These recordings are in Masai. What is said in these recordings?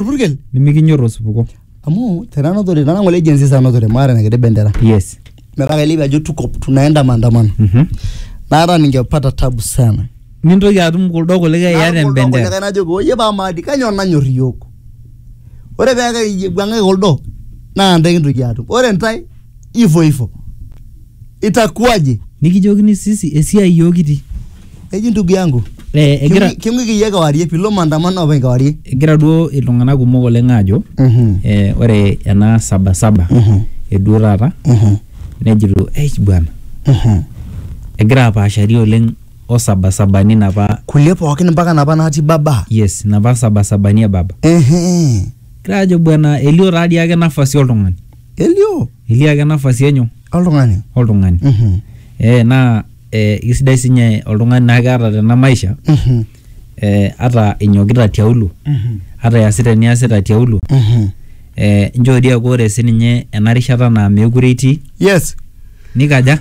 orpurkel nimikinyor osupuko amu tenanotore tana ngole agency sanotore maata nekede bendera yes metaa kailepie ajo tuko tunaenda maandamano Mhm. naata ningepata tabu sana nintoki atum kuldo kulikae iata Naata kuldo embendera kulikae najoki oye paa maadi kanyoo nanyor iyiok ore peeku iwuang'aki kuldo naa ntae kintoki atum ore ntae ivo ivo itakuwaje nikijokini sisi esiai iyiook kitii eji ndugu yangu Eh, egira King'u- king'uiki iyie kewarie pilo maandamano openy kewarie egira duo iltung'anak kumok oleng aajo Mhm. eh, ore ena sabasaba Mhm. eduo taata Mhm. nejito eich bwana Mhm. egira apaashari oleng o sabasabani napa kulie pookin mpaka napa natii baba yes napa sabasabani e baba Ehe. Egira ajo bwana elio taa dii ake nafasi oltung'ani. Elio Elio ake nafasi enyo oltung'ani. oltung'ani. Mhm. Eh naa eh kisidai sinye oltung'ani naa keata tena maisha Mhm. eh ata inyokita tiaulo, Mhm. ata iasita eniasita tiaulo, Mhm. eh inchoo dii eeku ore sininye ena rishata naa meekure itii, Yes. nikaja?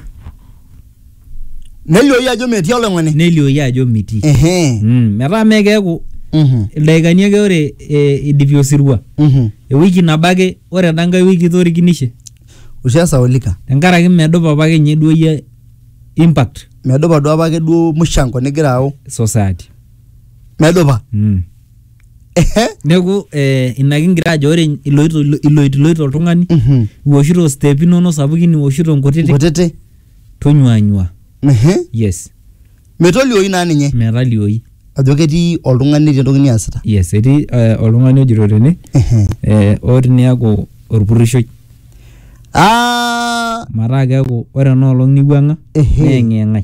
nelioyu ajo metii oloing'oni nelioyu ajo mitii Ehe. mm. metaa mee keeku Mhm. ildaikani ake ore e, idipi osirua Mhm. ewiki nabo ake ore enda nkae wiki itorikinishe oshi esaulika tenkaraki medupa apake ninye duo iyie impact medupa duo apake duo mushango nigira au society medupa mm. Ehe. neeku eh, ina kigira ajo ore iloito iloitiloito oltung'ani Mhm. iwoshito step inono sapukin iwoshito nkutiti Nkutiti. tonyuanyua Ehe. yes Metolioi naa ninye metalioi ajo ketii oltung'ani netii entoki niasita. yes etii eh, oltung'ani ojito tene Ehe. eh, oo tiniaku orpurrishoi Ah, mataa keeku ore enoolong niwuang'a Ehe. neeng'iyeng'ai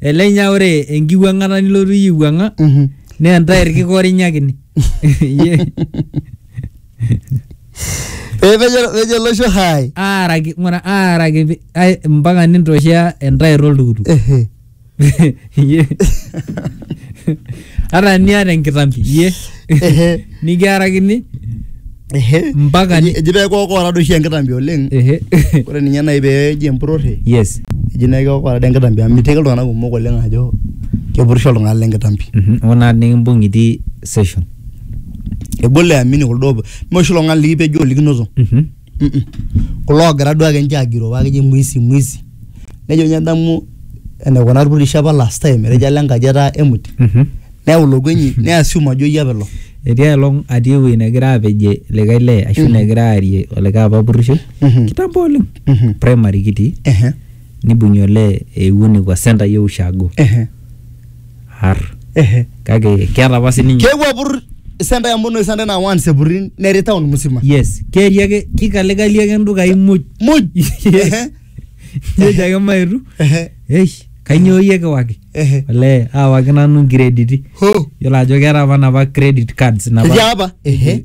Elenya ore enkiwuang'ata nilotu iyie aiwuang'a Mhm. naa entae irkikorinyakini. Iyie Eh, pejo pejo losho hai. aaraki ng'ura aaraki pi- ai- mpaka nintoshea entair oltukutuk. Ehe. Iyie. ata eniata enkitambi iyie Ehe. nikiarakini Ehe. Mpaka ni- Eji- eji pee kookoora doi oshi enkitambi oleng Ehe. ore ninye nai pee eji empurore yes eji nai kookoora doi enkitambi amu mitiki iltung'anak kumok oleng ajo kepurisho iltung'anak lenkitambi Mhm. ona nikimbung itii session egol eamini kuldo mee oshi iltung'anak likipejo olikinoto Mhm. kulo oogira duake ninche agiroo paa keji mwizi mwizi nejo ninye adamu enaikuna irpurrishi apa last time etejo alo enkaji etaa empty neyau ilo kuenyi ne assume ajo iyie apa ilo etii aelong atii ewueji negira apejie likae lee ashu negira aarie olikae apa purrishoi Mhm. kitambo oleng Mhm. primary kitii ehe nibung'ie olee eewuo nekua centre e ushago ehe har kake keeta apa sininye keewuo apur isenta emono isenta naa once epurin neri town musima yes keeri ake kikalekali ake ndukai muj muj Ehe, nejo ake maetu ehe, eish kainyoo iyie kiwaki ehe. olee aawaki nanu nkrediti ho yiolo ajo keeta apa napa credit cards napa etii apa ehe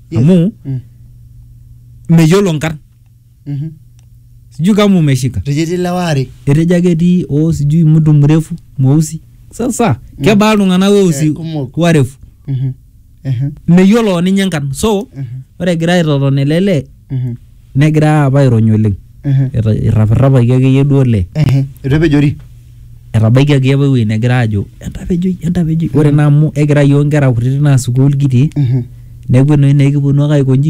Yes. amu Mm. meyiolo nkarn Mhm. sijui kama umeshika Rejeti lewa are. etejo ake etii oo sijui mtu mrefu mweusi sasa kebaa iltung'anak weusi Eh, kumok. warefu Mhm. Mhm. meyiolo ninye nkarn so Mhm. ore egira aitoton ele lee Mhm. Negira apa airony oleng. Eta- Irrapirrapaki akeyie duo olee. Ehe, eitu epejori. Etabaikiaki apa ewueji negira aajo entapejoi, entapejoi. Ore naa amu ekirai iyiook inkera kutiti naa sukuul kitii neeku enoshi naa ekiponu ake aiko inji